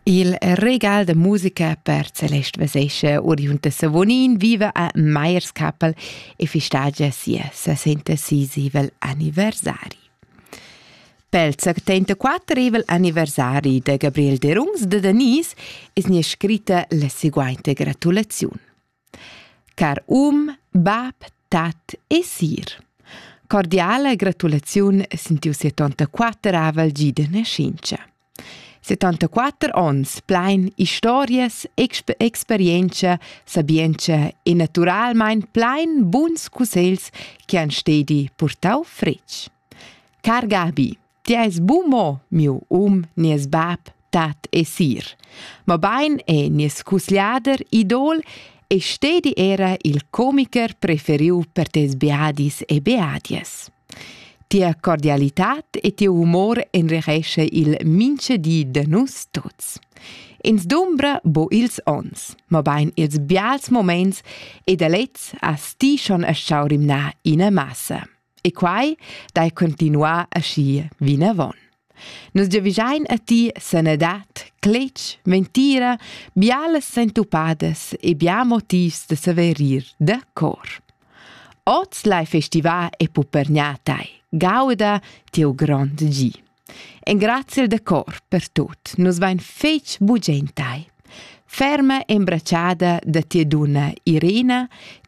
Il regal da musica per Celeste Vesescha oriunda Savonin viva a Meierskapel e festagia sia 66 anniversari. Pel 74 il anniversari da Gabriel Derungs de Denise es nia scritta la seguainta gratulaziun. Car um, bab, tat e sir. Cordiala gratulaziun sin tiu 74avel gi de nascenza. 74 ons plein historias, exp experienza, sabienza e naturalmein plein buns cussegls che han stedi purtau fretg. Car Gabi, Ti eis bu mo miu um, nies bab, tat e sir, mabain è nies cusgliader idol e stedi era il comiker preferiu per tes beadis e beadies. Tia cordialitad e tiu humor enrichesce il mince di de nus tuts. Ins dumbra bo ils ons, mabain ils bials moments e da lez as ti schon a schau rimnar ina massa. E quai dai continuà aschi vinavon. Nus giavischein a ti sanadad, cletg, ventira, bialas sentupadas e bia motivs da saver ir da cor. Oz lai festivar e pupergnà tai, gauda tiu grond gi. Engraziel da cor per tut. Nus vein fetg bugen tei. Ferma embratschada da tia dunna Irina,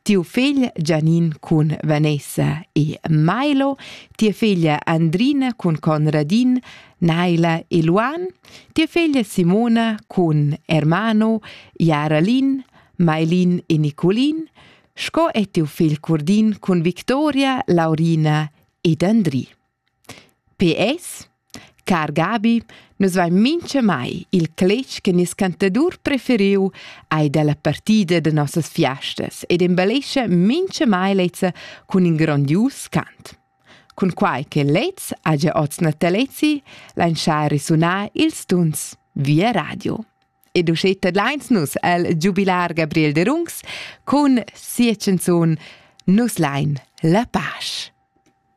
tiu figl Gianin cun Vanessa e Milo, tia figlia Andrina cun Conradin, Naila e Luan, tia figlia Simona cun Hermano, Jaralin, Mailin e Nicolin, sco e tiu figl Curdin cun Victoria, Laurina ed Andri. PS. Car Gabi, nus vain minchamai il cletg che nies cantadur preferiu ei dalla partida de nossas fiastas ed embellescha minchamai lezza cun in grondius cant. Cun quai che lez ha gia oz natalezi, lain schar risunar ils tuns via radio. Ed uschè tadlains nus el giubilar Gabriel de Rungs cun sia canzun Nus lain la pace.